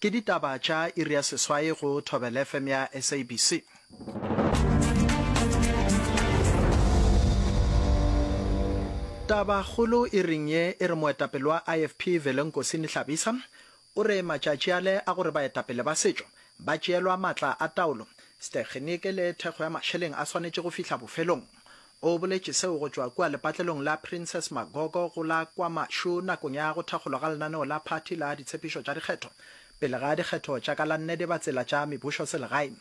Ke ditaba tša iri ya seswai go Thobelfm ya SABC. Tabakgolo iring ye e re moetapele wa IFP Velenkosini Hlabisa o re matšatši ale a gore baetapele ba setšo ba tšeelwa matla a taolo, stekgeniki le thekgo ya mašeleng a swanetše go fihla bofelong. O boletše seo go tšwa kua lepatlelong la Princess Magogo go la KwaMashu nakong ya go thakgolwa ga lenaneo la phathi la ditshepišo tša dikgetho pele ga dikgetho tša ka la nne di ba tsela tša mebušoselegae.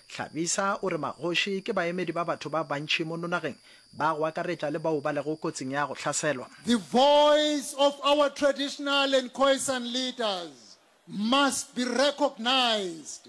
Hlabisa o re magoši ke baemedi ba batho ba bantši mo nonageng ba go akaretša le bao ba lego kotsing ya go hlaselwa. The voice of our traditional and Khoisan leaders must be recognised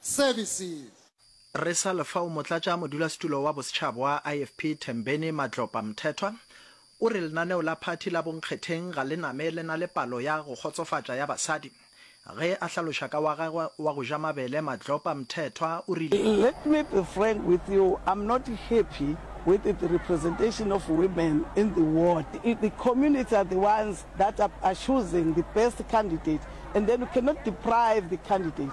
Services. Re sa le fao, motlatša modulasetulo wa bosetšhaba wa IFP Thembeni Madlopa Mthethwa o re lenaneo la phathi la bonkgetheng ga le name le na le palo ya go kgotsofatša ya basadi. Ge a hlaloša ka wa gagwe wa go ja mabele, Madlopa Mthethwa o rile. Let me be frank with you, I'm not happy with the representation of women in the ward. The community are the ones that are choosing the best candidate and then you cannot deprive the candidate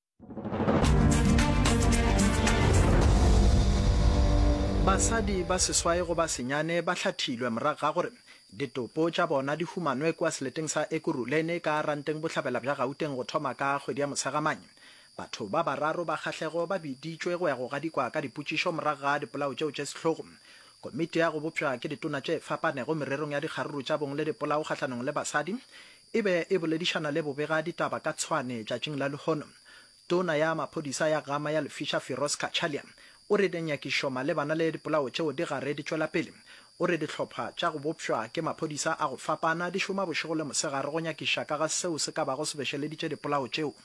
Basadi ba seswai go ba senyane ba hlathilwe morago ga gore ditopo tša bona di humanwe kua seleteng sa Ekurhuleni ka Ranteng Bohlabela bja Gauteng go thoma ka kgwedi ya Motshegamang. Batho ba bararo ba kgahlego ba biditšwe go ya go gadikwa ka dipotšišo morago ga dipolao tšeo tše sehlogo. Komiti ya go bopšwa ke ditona tše fapanego mererong ya dikgaruru tša bong le dipolao kgahlanong le basadi e be e boledišana le bobega ditaba ka Tshwane tšatšing la lehono. Tona ya maphodisa ya Gama ya Lefisha Firoz Cachalia o re dinyakišo malebana le dipolao tšeo di gare di tšwela pele. O re dihlopha tša go bopšwa ke maphodisa a go fapana di šoma bošego le mosegare go nyakiša ka ga seo se ka bago se bešeleditše dipolao tšeo.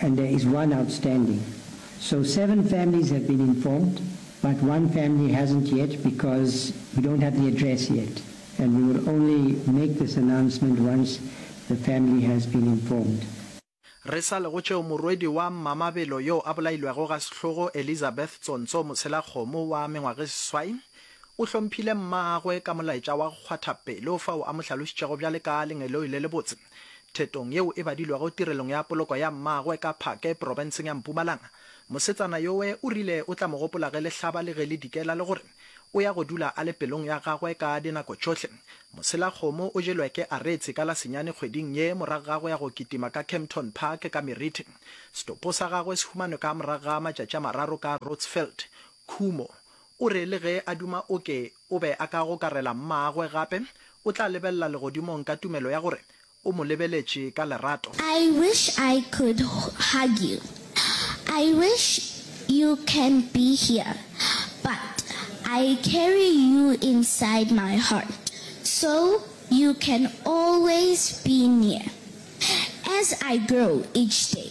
and there is one outstanding so seven families have been informed but one family hasn't yet because we don't have the address yet and we will only make this announcement once the family has been informed. Re sa lego tšeo morwedi wa Mmamabelo yo a bolailwego ga sehlogo Elizabeth Tsontso Motshelakgomo wa mengwageseswai o hlomphile mmagwe ka molaetša wa go kgwatha pelo fao a mo hlalošitšego bjale ka lengeloi le lebotse. Thetong yeo e badilwego tirelong ya poloko ya mmagwe ka Phake profenseng ya Mpumalanga, mosetsana yowe o rile o tla mo gopola ge le hlaba le ge le dikela le gore o ya go dula a le pelong ya gagwe ka dinako tšhohle. Moselakgomo o jelwe ke Aretse ka la senyane kgweding ye morago ga go ya go kitima ka Kempton Park ka Meriti. Setopo sa gagwe se humanwe ka morago ga matšatši a mararo ka Roodsveld, Khumo, O re le ge a duma o ke o be a ka gokarela Mmagwe gape, o tla lebelela legodimong ka tumelo ya gore o mo lebeletše ka lerato. I wish I could hug you, I wish you can be here, but I carry you inside my heart so you can always be near as I grow each day.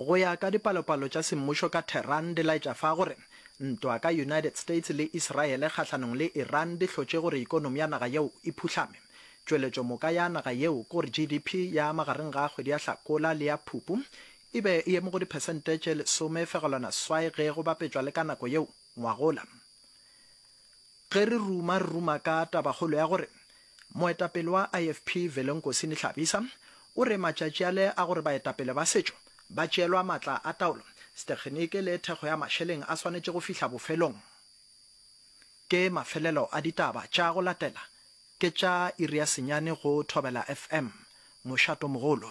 Go ya ka dipalopalo tša semmušo ka Tehran di laetša fa gore ntwa ka United States le Israele kgahlanong le Iran di hlotše gore ekonomi ya naga yeo e phuhlame. Tšweletšo moka ya naga yeo ke gore GDP ya magareng ga kgwedi ya Hlakola le ya Phupu e be e eme go diphesente tše lesome fegelwana swai ge go bapetšwa le ka nako yeo ngwagola. Ge re ruma re ruma ka tabakgolo ya gore Moetapele wa IFP Velenkosi Nihlabisa o re matšatši ale a gore baetapele ba setšo ba tšeelwa matla a taolo, stekgeniki le thekgo ya mašeleng a swanetše go fihla bofelong. Ke mafelelo a ditaba tša go latela ke tša iri ya senyane go Thobela FM. Mošatomogolo.